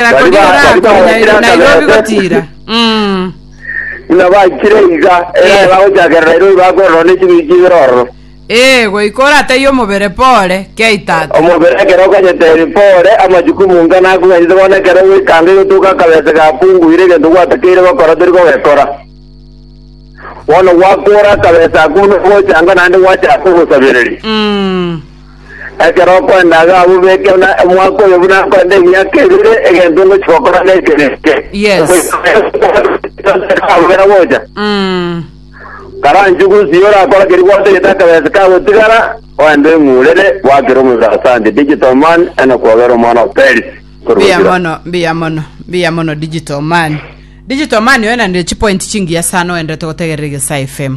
Bari ba- bari bagachire ase Nairobi Nairobi. gotira. Mm. Buna bachire iga, era Eh. bagochakera Nairobi bakorora ne ching'iti chibere ororo. Ee, goika orataiye omobere pore, kiaitata. Omobere ekero okanyeteri pore, amajukumu ng'a nakong'anyete bono ekero gwekanga igotoka akabese gakunguire egento gwatakeire gokora tori kogekora. Bono gwakora akabese ako buna gochanga naende gwachaka ogosabereri. Mm. Ekero okoenda iga abwo beke buna omwaka oyo buna nkorete emiaka ebere egento ngochia gokora neke neke. Yes. Abera gocha. Mm. Karanchu gusi orakora keri gwatagete akabesi kagotigara oende eng'urere gwakire omobere asante digital man eno kwogera omwana wa Paris. Korwa Mbuya Gira. mono, mbuya mono, mbuya mono digital man. Digital man oyo nande chipoint chingiya sana oendete gotegerera Egesae FM.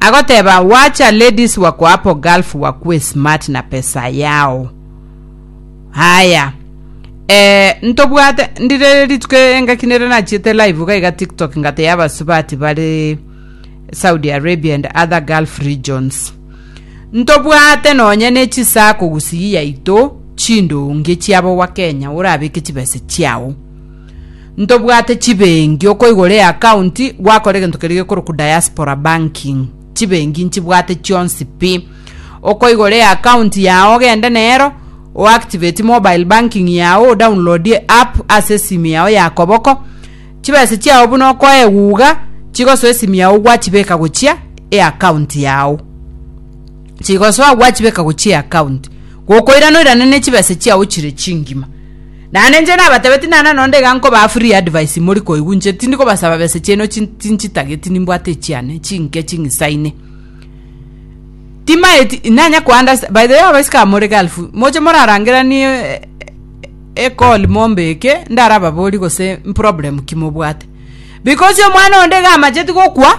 Agoteba wacha ladies wako apo gulf wakue smart na pesa yao. Haya. Eh, ntobwate ndire rituko engaki nere nachiete live iga iga TikTok ngate yabasubati bari Saudi Arabia and other Gulf regions. Ntobwate nonya ne chisa kogusigi yaito chindonge chiabo wa Kenya orabeke chibese chiao. Ntobwate chibengi okoigora eakaunti gwakora egento keria gekorokwa diaspora banking. Chibengi nchibwate chionsi pi. Okoigora eakaunti yao ogende nero, oactivate mobile banking yao, odownloadie app ase esimi yao ya koboko. Chibesa chiao buna okoa eguga, chigosoa esimi yao gwachibeka gochia eakaunti yao. Chigosoa gwachibeka gochia eakaunti. Gokoirana oirane ne chibesa chiao chire chingima. Naende inche nabatebetie nana nonde iga nkobaa free advice imori koigwa inche tindi kobasaba besa chiaino chinchitageti nimbwate echiane chinke ching'isaine timaeti nanya ko understand by the way abaiseke aba more gulf moche morarangeranie e call mombe eke ndarababorie gose problem ki mobwate because omwana onde iga amacheti gokwa.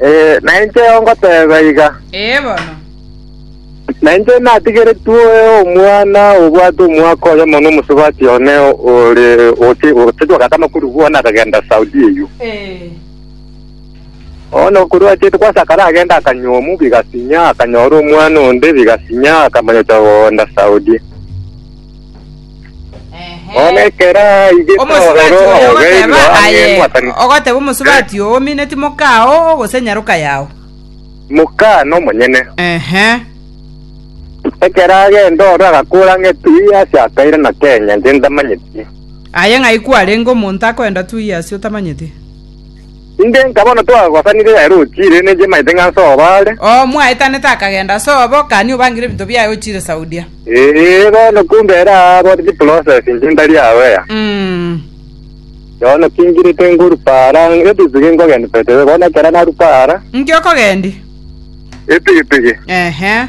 Ee, nainche ngoteba iga. Ee bono. Nainche natigeretwe omwana obwate omwaka oyo mono omosubati one ore oche oche wakata makuru bwana akagenda Saudi eyo. Ee. Ono kuru achete kwasakara agenda akanyomu bigasinya akanyora omwana onde bigasinya akamanya ocha kogenda Saudi. Ehe. Bono ekero aigete Omosubati ororo oyo ogeirwe ogoteba ang'e aye, mwatani, ogoteba omosubati oo, omineti moka oo, gose nyaroka yao. moka nomonyene. Ehe. Ekero agenda ororo agakora ng'a etui ase akaire na kenya, inche ntamanyeti. Aye ng'ai kwarenge omonto akoenda tui ase otamanyeti? Inche nka bono twagosanire ere ochiire, ne inche maete ng'a nse obo are. Oo mwaetanete akagenda ase obo, kani obangire ebinto biaye ochiire Saudia? Ee, bono kumbe ere aabore chiprocess inche ntari aware. Mm. Bono kingirete ngoruka ara, ebigbigi nkogenda by the way, bono ekero naruka ara, Inki okogendi? ebigbigi. Ehe.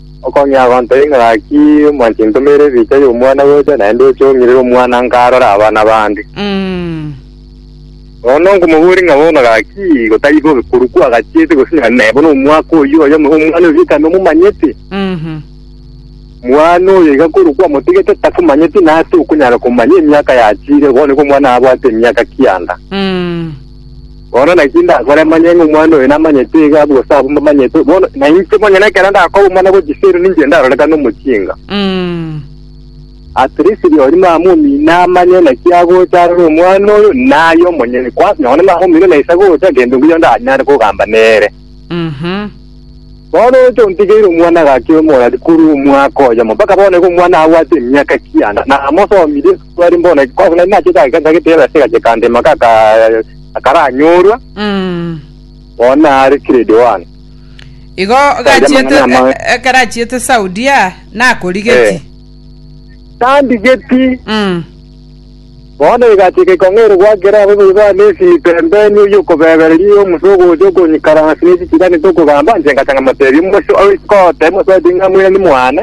Okong'ea agontebia ng'a gaki omwanchete ntomeire ebicha y'omwana gocha, naende oche ong'irere omwana nka arore abana bande. Mm. Bono nkomoboria ng'a bono gaki igo tari bobe korwa kwagachiete gose na na bono omwaka oyio oyo omo- omwana oyio ekero nomomanyete, Mhm. mwana oyo iga korwa kwamotigete takomanyeti nase okonyara komanya emiaka yachire, bono igo omwana abwate emiaka kianda. Mm. Bono naki ndakore manye ng'a omwana oyo namanyete iga abwo gose abwo mbamanyete, bono na inche monyene ekero ndakoba omwana bwe chisemi ninche ndarorekana omochinga. Mm. At least rirorio mama omino amanye naki agocha arore omwana oyo naye omonyene. Kwasi nonya mama omino naisa gocha gento ngiyo ndanyare kogamba nere. Mhm. Bono oroche ontigeire omwana gaki omorari korwa omwaka oyomo mpaka bono iga omwana abwate emiaka kianda, na amosomire esukuru are mbono ki? Korende nari nachiete ageka ntagete yaba ase egache kandema ka aka- akaranyorwa, Mm. bono nare grade one. Igo Aria gachiete mang'ana ama- e- ekero achiete Saudia nakorigeti. Eh. Tandigeti Mm. Bono egachika ekong'erigwa ekero abaibori ba Levi Mpembeni oy'okobebereria Yomusa ogocha okonyikaransa ase ense chiganete okogamba, inche ngacha ngamoteebia omochie o isiko otebie mosacha ng'a moirani mwane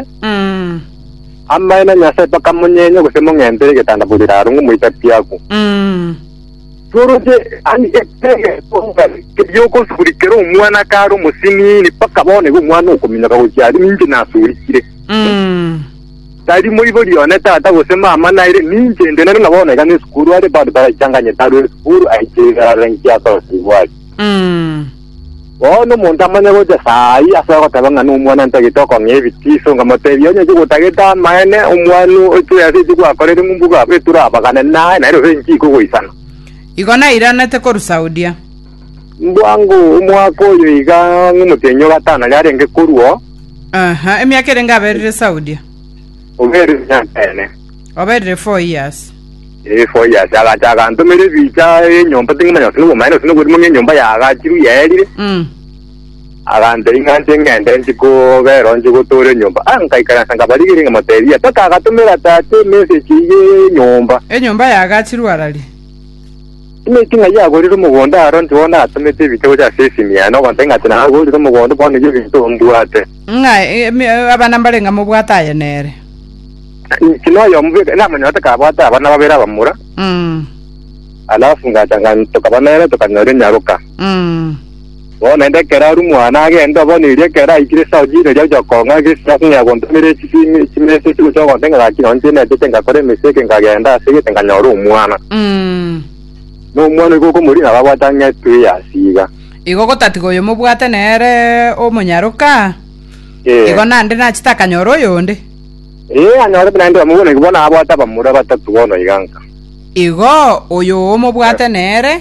amaene a Nyasae mpaka monyenye gose mong'entere egetanda bori raaro ng'a moite apiaku. Tworoche aye ekero egetonga keria ogosuri kere omwana kare omosiniini mpaka bono igo omwana okominyoka gochia aria, ninche nasurikire. Tari moibori one tata gose mama naire, ninche inde nere na bono iga nesukuru are, bado taraichanganyete arue esukuru aiche iga arore inki asorosirigwe are. Mm. Bono omonto amanye gocha saa ayio asoe goteba ng'a nomwana ntagete okong'ea ebitiso, nkamotebia onye inche gotagete amaene, omwana oche ase eki gwakorire ng'umbu iga abe turabagane naye, naende gose inki ikogoisana. Igo nairanete korwa Saudia. Bwango omwaka oyo iga ng'omotienyi o gatano aria arenge korua oo. Aha, emiaka erenge aberire Saudia. Oberire emyaka ene. Oberire four years. Ee, four years. Agacha agantomera ebicha enyomba ting'omanya gose nobomaya gose noborimo ng'a enyomba yagachirwe yaerire. Mm. Agantei ng'a nche ng'ende nchi kobera nchi gotora enyomba. Ah, nkaikaransa nkabarigeria nkamotebia. Mpaka agatomera tata emessage iga enyomba. Enyomba yagachirwe araria. Timanyeti ng'ai agorire omogondo aro, inche bono natomete ebiite gocha ase esimia, na ogontaki ng'a tinagorire omogondo, bono eyio ebinto mbwate. Ng'a emi- abana mbarenge mobwate aye nere. Inki noyomo bweka namanya gose kabwate abana babere abamura, Mm, alafu ngacha nga tokaba nere tokanyora enyaroka. mm. Bono naende ekero aria omwana agenda, obono erio ekero aikire ase ochiiri eria gochia kong'a egesike ase ng'a yagontomera echisimi chimesa echio gochia ogontee ng'a gaki nonye tinetete ngakora emesa eke nkagenda ase egete nkanyora omwana. Mm. Na omwana oigo okomorigia nabo abwate ang'e etwe ya asiiga. Igo gotatiga oyo mobwate nere omonyaroka, Ee. igo naende nachete akanyora oyonde. Ee, anyorete naende bamwe bono igo bono abwate abamura batato bono iga nka. Igo oyo omobwate nere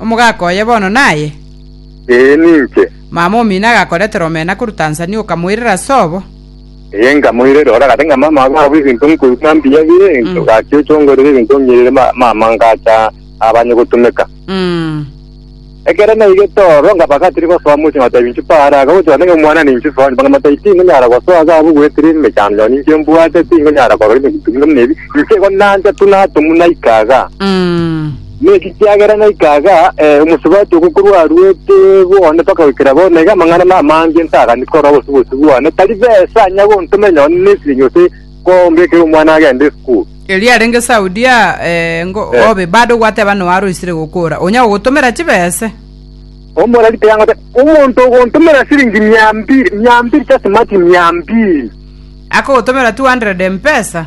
Omogaka oye bono naye? Ee, ninche. Mama omino agakoretera omena korwa Tanzania okamoirera ase obo? Ee, nkamoirera. Ore agate ng'a mama abe abwo ebinto nkoigwa mbuya bire, Mm. gaki oche ongorere ebinto ong'irere ma- mama ngacha abanye gotumeka. Mm. Ekero naigete oro, nkaba gatiri gosoa mochie ngotebi inche paara, akagocha goteba omwana ninche soa nyomba, ng'amata inche tinkonyara gosoa ase abwo goetera emechando yao ninche mbwate, tinkonyara korora emegutu buna ebi, inche igo nancha tu natomwa naika iga. Mm. Nekiagera naika iga ee, omosubati ogo korwa aruete bwone mpaka goikera bono, iga amang'ana namange ntaganeti korora bosiboti bwane. Tari besa nya gontoma enyao nesirinyia gose kombekera omwana agende esukuru. Erio arenge Saudia ee, ngo Eh. obe bado gwateba noa aroisire gokora, onya gogotomera chibese. Omoreri tiangote omonto ogontomera siringi mia mbiri, mia mbiri tase mati mia mbiri. Akogotomera 200 mpesa.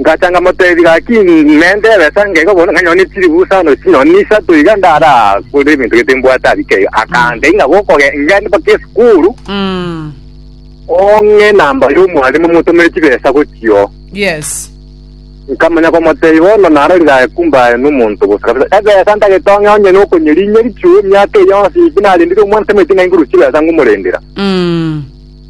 Ngacha nkamotebia, Gaki, nentebe sa ngaiga bono ng'a nyone chiribusa onde chinyoni isato iga ndarakore ebinto gete mbwate abike iga. Akambia, Ing'abo okoge- ngende mpaka esukuru, ong'e enamba y'omwalimu omotomere chibesa gochio. Yes. Nkamanya komotebia, Bono narorire aye kumbe aye nomonto bosa kabisa. Ebesa ntagete ong'e onye nokonyeri inyeri chio emiaka eye yonsi pi narendire omwana tamaeti ng'a inguru chibesa ngomorendera.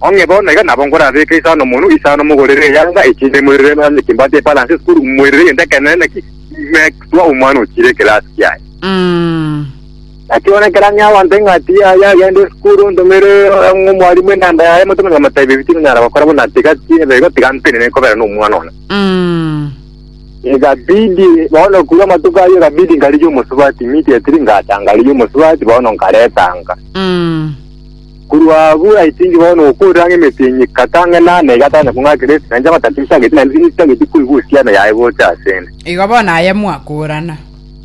Onye bono iga nabo nkorabeeke isano monwe isano mogorere eyanga echi ime moirere nonye kimbwate epalanse esukuru moirere egento ekenene naki ime kutwa omwana ochire ekerasi kiaye. Mm. Naki bono ekero ang'ea abanto eng'ati yaye agende esukuru ntomere ang'e omwalimu enamba yaye motomanye gomotebi ebi tinonyara gokora buna tiga tibe igo tiga ntenene nkobera nomwana one. Mm. Egabidi bono korwa amatuko ayio egabidi nkarigia omosubati immediately ngacha nkarigia omosubati bono nkaretanga. Mm. Korwa abwo I think bono okorera ng'a emesinyi kata ang'e na ana iga tanya kong'akera ase nainche amatakiri ntageti naende ase nintageti koigwa osiano yaye gocha asende. Igo bono aye mwakorana.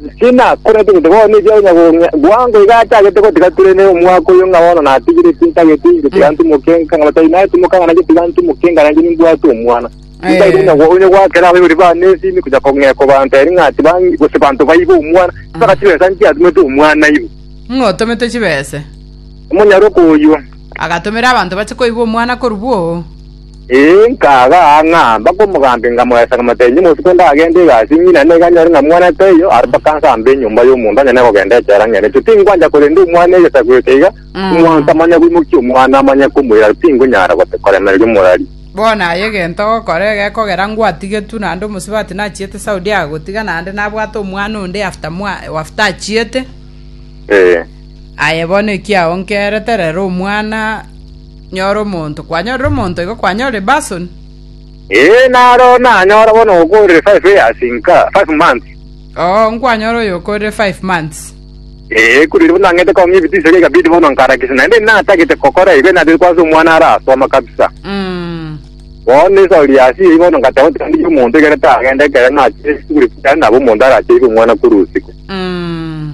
Inche nakorete gete bono ebi onya gong'e bwango iga atagete gotiga tore ne omwaka oyo ng'a bono natigire tintageti inche tiga ntimoke nka ng'a batari naye timoka ng'a nainche tiga ntimoke nka nainche nimbwate omwana. Tintageti onya go- onya goakera abaibori bane esimi konya kong'ekwa banto eri ng'a tibangi gose banto baibe omwana. Mpaka chibesa nchiatumete omwana ibo. Ng'otomete chibese. omonyaroka oyio. Agatomera abanto bache koigwa omwana korwa bwoo. Ee, nkagaa ng'a mbakomogaambia, nkamoyesa, nkamotebia, Omosiko onde agende egasi, ng'ina nigo anyore ng'a omwana taiyo, aria mpaka nse amba enyomba y'omonto onye nekogenda echela ng'enete. Tingwancha korenda omwana egesaku eke iga, omonto amanye koimokia omwana, amanye komoira, tingonyara gote- koremereria omorari. Bono aye egento ogokora egekogera ngwatigetwe naende omosubati nachiete Saudi agagotiga naende nabwate omwana onde after mwa after achiete. Ee. Aye bono ekiaonkerete, rera omwana, nyora omonto. Kwanyorire omonto, igo kwanyorire basoni. Ee, naro nanyora bono okorire five years nka five months. Oo, nkwanyora oyo okorire five months. Ee, ekuru eria bono nang'ete kong'a ebitisio iga ikabidi bono nkarakisa, naende eria natagete kokora igo natagete kwansa omwana arasoma kabisa. Mm. Bono esori yasi eyio bono ngateba oti tindi omonto ekero tagenda ekero nachire esukuru ekero naba omonto aracheire omwana korwa usiku. Mm.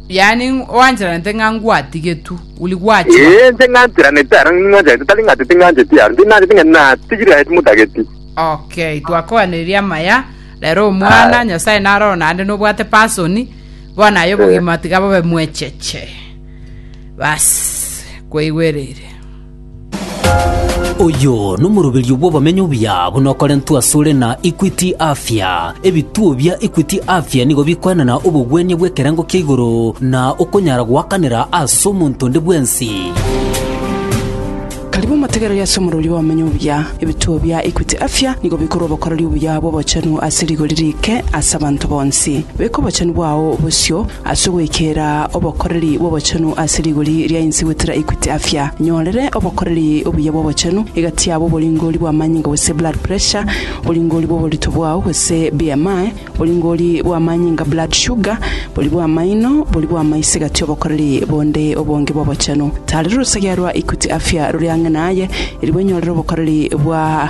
Yaani oancheranete ng'a ngwatigetwe, uli gwachwa. Ee, inche ng'ancheranete aro ng'ancherete, tari ng'a ting'ancheti aro, ting'ancheti ng'a natigire aye timotageti. Okay, twakoanereria amaya. Rero omwana, Aye. Nyasaye naroro naende nobwate person, bono aye obogima tiga bobe mwecheche. Bas, kwaigwereire. Oyo nomoroberio bw'obomenyo obuya buna okorentwe asore na Equity Afya. Ebituo bia Equity Afya nigo bikoenana obogwenia bw'ekerengo kia igoro na okonyara goakanera ase omonto onde bwensi. Karibu motegereri ase omoroberio bw'obomenyo obuya. Ebituo bia Equity Afya nigo bikorwa obokoreri obuya bw'obochenu ase rigori riike ase abanto bonsi. Beka obochenu bwao bosio Ase ogwekera obokoreri bw'obochenu ase rigori ria inse gwetera Equity Afya, nyorere obokoreri obuya bw'obochenu egati yabo oboringori bw'amanyinga gose blood pressure, oboringori bw'oborito bwao gose BMI, oboringori bw'amanyinga blood sugar, bori bw'amaino, bori bw'amaiso egati obokoreri bonde obonge bw'obochenu. Tarera orosegea rwa Equity Afya rore ang'e naye, erigwe nyorere obokoreri bwa.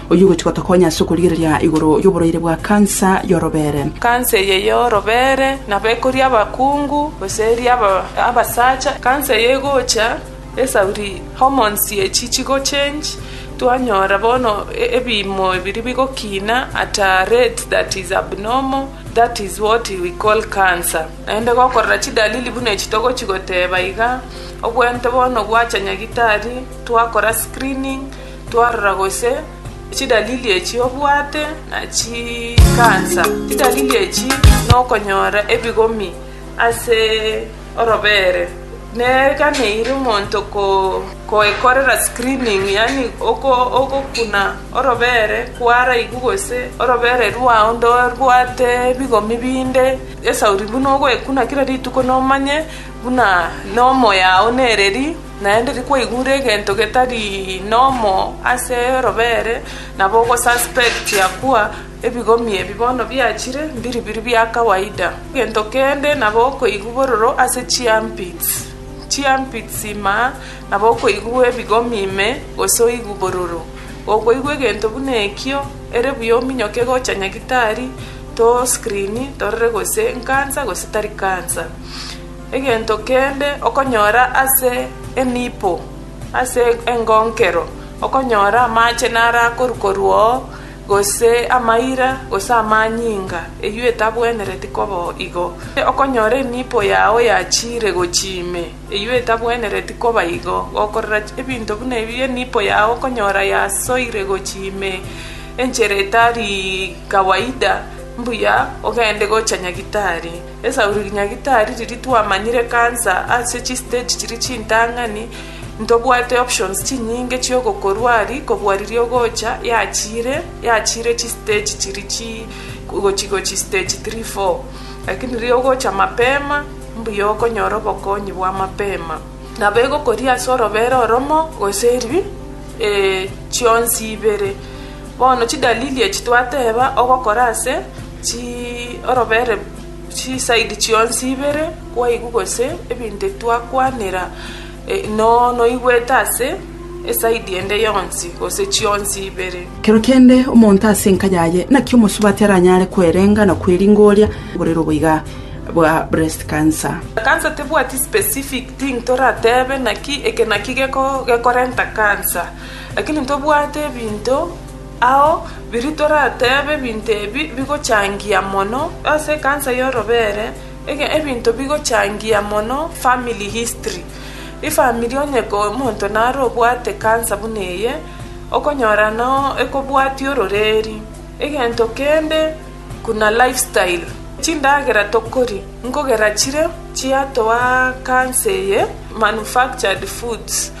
Oyio ogochia gotokonya ase okorigereria igoro y'oborwaire bwa kansa y'orobeere. Kansa eye y'orobeere nabo ekoria abakungu, gose eria abasacha. Kansa eye egocha esauri hormones chiechio chigochange, twanyora bono ebiimo ebiria bigokina at a rate that is abnormal, that is what we call cancer. Naende gokorora chidalili buna echi togochia goteba iga, obwenerete bono gwacha nyagitari, twakora screening, Twarora gose chidalili echi obwate na chikansa. Chidalili echi nokonyora ebigomi ase orobere neganeire omonto koekorera screening yaani ogokuna orobere kwaraigu gose orobere rwao ndorwate ebigomi binde esauri buna ogoekuna kira rituko nomanye buna nomo yao nereri Naende rikwaigure egento getari nomo ase robeere, nabo ogosuspect akwa, ebigomi ebi bono biachire mbiribiri bia kawaida. Egento kende nabo okoigwa bororo ase chiarmpits, chiarmpits ime nabo okoigwa ebigomi ime gose oigwe bororo. Gokoigwa egento buna ekio, ere buya ominyoke gocha nyagitari, to screen torore gose nkansa gose tari kansa. Egento kende okonyora ase enipo ase engonkero, okonyora amache narakorukorwa oo, gose amaira, gose amanyinga, eyio etabwenereti koba igo. Okonyora enipo yao yachiire gochia ime, eyio etabwenereti koba igo. Gokorera ebinto buna ebi, enipo yao okonyora yasoire gochia ime enchera etari kawaida, mbuya ogende gocha nyagitari. Esauri rinya gitari riri twamanyire cancer ase chi stage chiri chintang'ani ntobwate options chinyinge chiogokorwa ari kobua riria ogocha yachire yachire chi stage chiri chi gochi gochi stage three four lakini riria ogocha mapema mbuya okonyora obokonyi bwa mapema nabo egokoria ase orobera oromo gose eri chionsi ibere bono chidalili echi twateba ogokora ase Chi, orobere, chisaidi chionsi ibere, kwaigwa gose ebinto ebi twakwanera, eh, no, noigwete ase esaidi ende yonsi, gose chionsi ibere. Kero kende omonto ase enka yaye naki omosubati aranyare kwerenga na kweringa oria oborere oboiga bwa breast cancer. Cancer tebwati specific thing toratebe naki eke naki geko, gekorenta cancer, lakini ntobwate ebinto, Ao biria toratebe ebinto ebi bigochangia mono ase ekansa y'orobeere, ege ebinto bigochangia mono family history. Efamiri onye ko omonto nare obwate ekansa buna eye, okonyora no ekobwatia ororeeri. Egento kende buna life style, chindagera tokori, nkogera chire chiatoa kansa eye manufactured foods.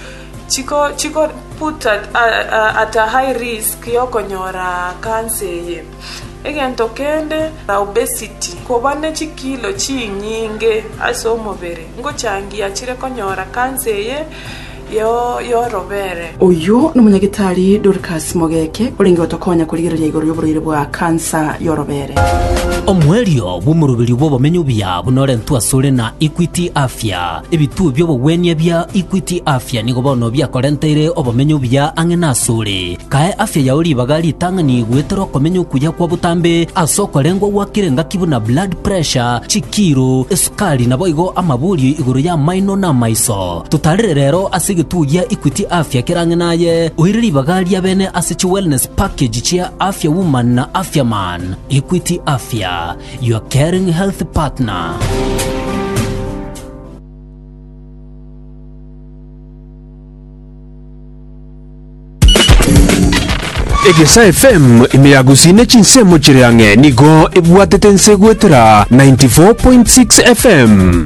chiko put at a high risk yokonyora cancer eye. Egento kende na obesity, koba ne chikilo chinyinge ase omobere ngochangia chire konyora cancer eye yorobere. Oyio nomonyagitari Dorcas Mogeke orenge gotokonya korigereria igoro yoborwaire bwa cancer yorobere. Omoerio bw'omoroberio bw'obomenyo buya buna orentwe asore na Equity Afya. Ebituo bi'obogwenia bia Equity Afya nigo bono biakorenteire obomenyo obuya ang'e nasore. Kae afya yao ribaga ritang'ani goetera okomenya okuya kwa botambe ase okorengwa gwakire engaki buna blood pressure, chikiiro, esukari naboigo amaborio igoro y'amaino na amaiso. Totarere rero ase egetuo gia Equity Afya kere ang'e naye, oire ribaga ria bene ase chi wellness package chia Afya Woman na Afya Man. Equity Afya. your caring health partner. egesa fm ime ya gusii ne chinsemo chire ang'e nigo ebwatete nse goetera 94.6 fm